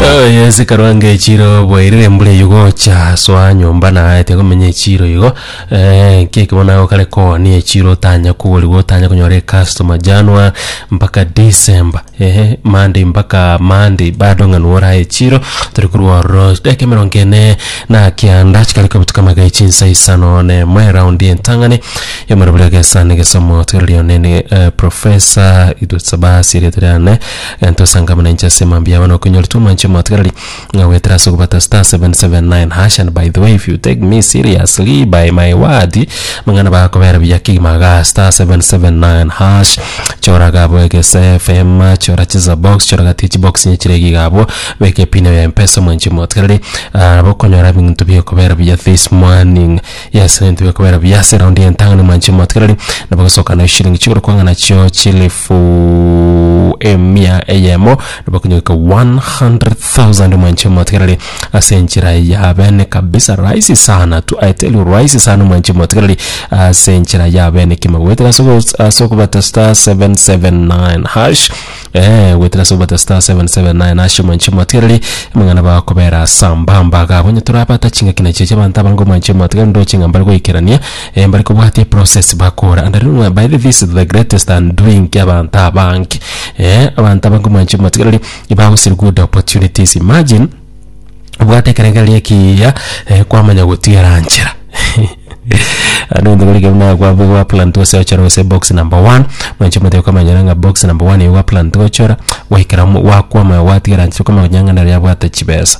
Oh, yes karwange chiro bwairire embura eyo gocha soa nyomba naete komenya echiro igo eh, keke bono nago kare koni echiro otanya koriwa otanya konyora ecustomer january mpaka december ehe monday mpaka monday bado ng'a nigo orae echiro tore korwa ororo dakika emerongo ene na kianda chikare kobutuka magaichi chinsa isano na emo eraundi entang'ani yomorobori egesa na egesomo tigereria onene eh, professor idusabasi erieta riane Egento osanga buna inche ase mambia yabo nokonyora twamwancha omotgereri ng'a goetera ase okobata star seven seven nine hash and by the way if you take me seriously by my word amang'ana aba agakobera buya kegima igaa star seven seven nine hash chora igaa abwo egese FM chora chisa box chora gati chibox inye chire igaa abwo beka epin yago ya mpesa omwancha omotgereri ah, nabo okonyora ebinto bigokobera buya this morning yes ebinto bigokobera buya ase eraundi ya entang'ani omwancha omotgereri nabo ogosoka na eshiringi chigoro kwang'a nachio chilifu elfu emia eyemo nabakonyogeka 100,000 mwanche motigarari ase enchera ya bene kabisa rahisi sana tu I tell you rahisi sana mwanche motigarari ase enchera ya bene kima gwetera ase ogo- ase okobata star 779 hash eh gwetera ase okobata star 779 hash mwanche motigarari amang'ana bakobera sambamba gabo onye torabata chingaki nachiche abanto abange mwanche motigarari ndoche ng'a mbare goikerania Eh mbare kobwatia process bakora and riu ng'a by the this is the greatest undoing kia abanto abange. Eh abanto abange omwanche matigarari ibagosiri good opportunities imagine obwate ekerengerero ekiiya eh kwamanya gotigera nchera ande onde gori kegima kwabwo gwa plan to gose ochore gose box number one mwanche mote okamanyera ng'a box number one igo gwa plan to gochora gwaikera mo gwakwama gwatigera nchera okamanya ng'a nare yabwate chibesa.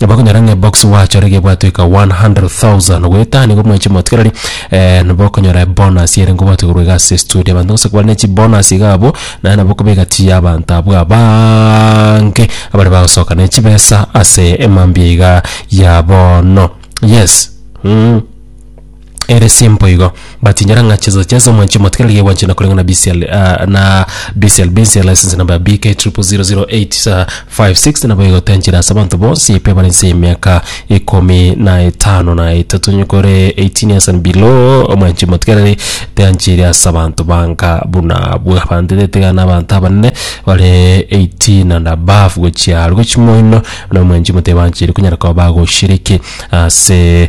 Bakonyora ng'a eboxi gwachore iga ebwatwe eka 100,000 goetania iga omwechi motigarari eh, nabo okonyora ebonus ere ngobwate korwa iga ase estudio. Abanto gose kobare ne chibonus iga abwo, naye nabo okobeka tii ya abanto abwo abaange abare bagosoka ne chibesa ase emambia iga ya bono. Yes, mm. ere simpo igo batinyara ng'a chizo chiase omwanchi omotigari nigo egwanchana koreng'a na BCL ah, na BCL Benz license number BK 000856 nabo igotenchera ase abanto bonsi epe bare nse y'emiaka ikomi na etano na etatu nyikore 18 years and below omwanchi omotigari teanchiri ase abanto banka buna abwo abanto tetiga na abanto abanene bare 18 and above gochia aria gochia moino na omwanchi omotigari banchiri konyara koba bagoshiriki ase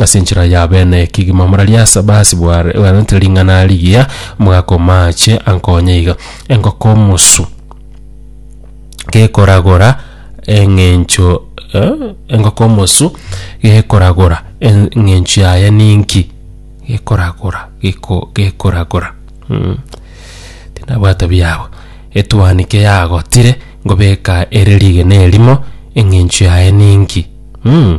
Ase enchera ya bene kegima morarie ase abasi bware- bwaretire ring'ana rigiya, mogakoma ache a nkonya iga. Engoko omosu gekoragora eng'encho eh, engoko omosu gekoragora en- eng'encho yaye ninki? Gekoragora, geko- gekoragora mm. Tinabwata biyabo. Etwanike yagotire, ngobeka ere rigena erimo, eng'encho yaye ninki? mm.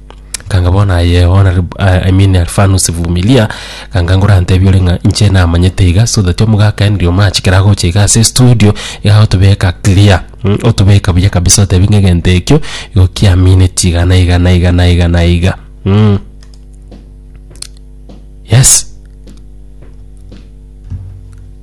Kanga bono aye ona rib- I I mean Alfanus Vumilia, kanga ngorantebi ore ng'a inche namanyete iga so that omogaka Henry Omach kera agocha iga ase estudio, iga agotobeka clear mm otobeka buya kabisa otebi ng'a egento ekio igo kiamineti iga na iga na iga na iga na iga mm. Yes.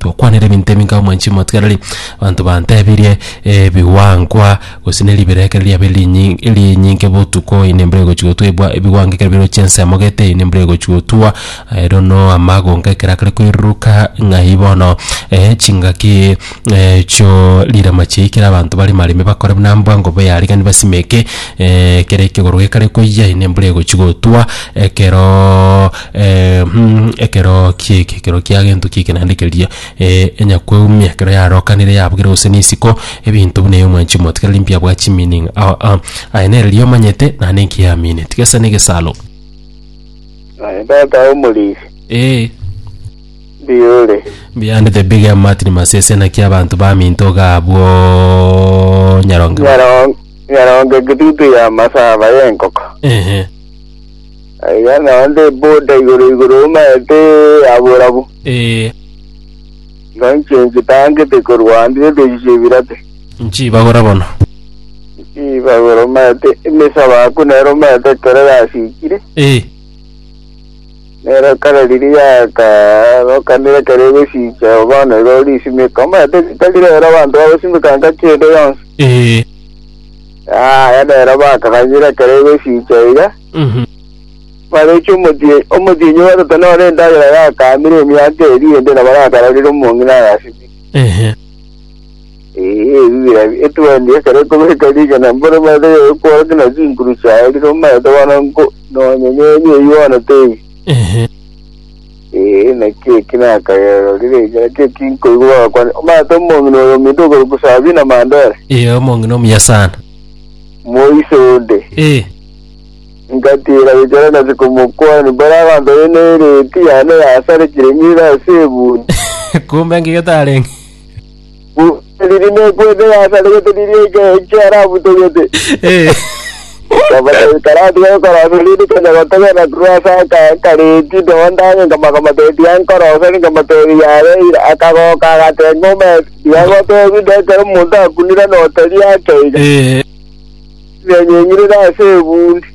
Tokwanera ebinto ebi nka omwanchi omotwareri, abanto bantebirie, Ebiwankwa, gose ne ribera ekero riabeire rinyi rinyinke botuko, eyio nembura egochi gotwa ebwa ebiwankwa ekero bire gochia ense emogete, eyio nembura egochi gotwa, ero no amagonga ekero akare koiruruka ng'ai bono chingaki chio rirama chiayi ekero abanto bare marembe bakore buna mbwa ngobe yaregani basimeke ekero ekegoro gekare koyia, eyio nembura egochi gotwa ekeroooo. Eeh-mm, ekero ki'eke, ekero kia gento ki'eke naende keria, eh, enyakweumia ekero yarokanire yabugire gose na isiko, ebinto buna eyo mwanchi mote, kera rimpia bwa chimeaning, ah-ah, aye nere riria omanyete naende enki yamineti, gesa na egesalo. Aye tata omorisia, Eeh, mbuya ore. mbuya ande the big M Martin Masese naki abanto baminto iga abwo Nyaronge. Nyarong- Nyaronge kitutu ya masaba y'enkoko. Ehe. Aiga naonde ebuda igoro igoro omaete aborabu, Ee, igo inche nchitangete korwa ande nebirechi chi'ebirate. nchibagora bono. Nchibagora omaete emesabe ako nero omaete ekero yasikire, Ee, nero ekero riria yakarokanire ekero egosicha bono igo risimeka omaete ritari rero abanto bagosimeka engaki ende yonsi. ee, Yaya nero bakaganyire ekero egosicha iga, Mhm. bareche omotie- omotienyi o gatatu nore endagera yakamire emiaka eria ende na barakarorire omong'ina agasimire. Ehe. Ee, ebi bira etwendi ekero ekobeka rigena mbore omanyete gegokworokia na chinkuru chiaye rire omanyete bono nko nonye nyenye eyio bono teiyo. Ehe. Ee, naki eki nakagero rire iga, naki eki nkoigwa bagakwana, Omanyete omong'ina oyo ominto okorokwa Sabina Mandera, Ee, omong'ina omuya sana. moise onde? Ee, Ngatiira gochora nase komokwania, mbore agantorie n'ereeti yane yasarekire ng'ire ase ebunto. kumbe ng'igete arenge. Gose riria nekwete yasaregete riria eke- ekiarabutogete. Eh, Nkabatebia, Karatiga ekorosio riri konya gotogena korwa ase aka- akareti ndondange, nkamaka omotebi ankoroseri, nkamotebia, Yare eira. Akagoka agateba, Ng'umete, tiga gotebi inde ekero omonto akunire notari ake iga, eh, nyenyeng'irire ase ebundi.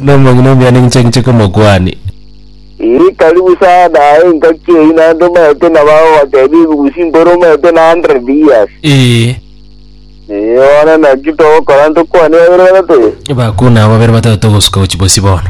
Nomong'ina omiani inche inche komokwani. Ii, karibu sana aye engaki eyi naende omanyete nabo agogoteebia ebibusi mboro omanyete na 100 years. Ee, Ee, bono naki togokora ntokwane babere batato eye. bakuna abwo babere batato togosuka gochia bosio bono.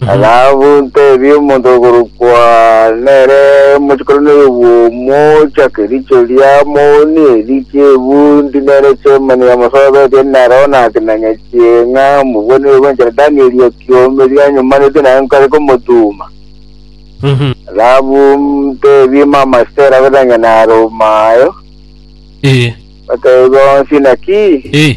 Thahabu ntebie omonto okorokwa nere mochikoroneria obwomo ocha kericho ria moni eri chiebu ndi nere chemani yamosobetie naro nakinanya chieng'a mobwanire gwenchera Danieli ekiombe rianyomanetwe naye nkare komotuma Thahabu ntebie mama Estera abe na nyana aroma ayo Ee. batebie bonsi naki Ee.